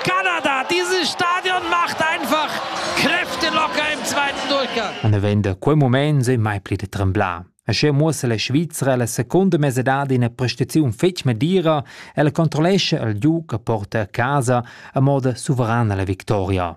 Kanada. Dieses Stadion macht einfach Kräfte locker im zweiten Durchgang. Und er vende quei moment sei mai pli de tremblar. Asche muossa la Svizra la seconda mesedad ina prestaziun fetg medira e la controllesce al giug che porta a casa a moda suverana la victoria.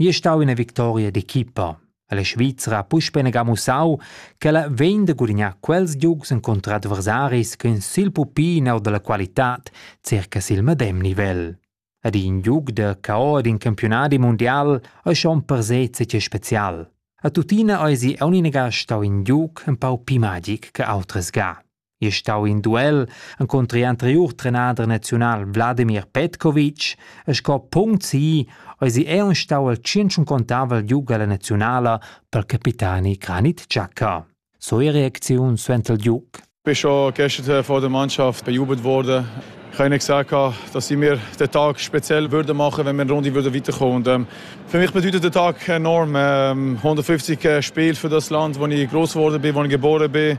Gie stau ina victoria d'equipa. La Svizra ha puspei negà mussau ch'ella vegn da gudignar quels giugs encunter adversaris ch'ein sil pupin or dalla qualitad circa sil medem nivel. Ed in giug da caor d'in campiunadi mundial ei schon per sez tgei special. A tuttina eisi aunc negà stau in giug empau pli magic che autras ga. è stau in duel encunter l'anteriur trenader naziunal Wladimir Petkovic e sco punct si eisi ei stau il tschintg contavel giug alla naziunala per capitani Granit Xhaka. So e reacziun suenter il giug. bin schon gestern vor der Mannschaft bejubelt worden. Ich habe ihnen gesagt, dass sie mir den Tag speziell würden machen wenn wir eine Runde würden weiterkommen Und ähm, für mich bedeutet der Tag enorm. Ähm, 150 äh, Spiele für das Land, wo ich groß geworden bin, wo ich geboren bin.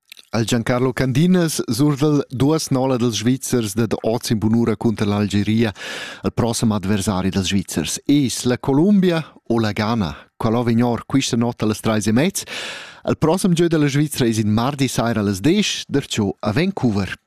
Al Giancarlo Candinas surda'l duas nola dals Svizzers dad oz in bunura cunter l'Algeria al prossem adversari dals Svizzers. Es la Columbia o la Ghana? Qual ho vignor quista notta las trais e mez? Al prossem gieu della Svizra es in mardi saira las 10, darciò a Vancouver.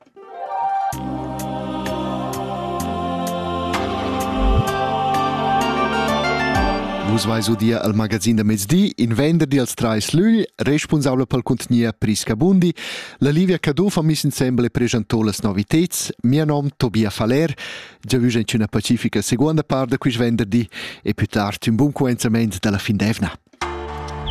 Vus vais udia al magazin da mezdi, in venderdi als trais lügl, responsabla pel contgnier Prisca Bundi. La Livia Cadufa mis insembel e presentò las noviteds. Mia nom Tobia Faller, già vus in una pacifica seconda part da quist venderdi e più tard un buon coenzament dalla fin d'evna.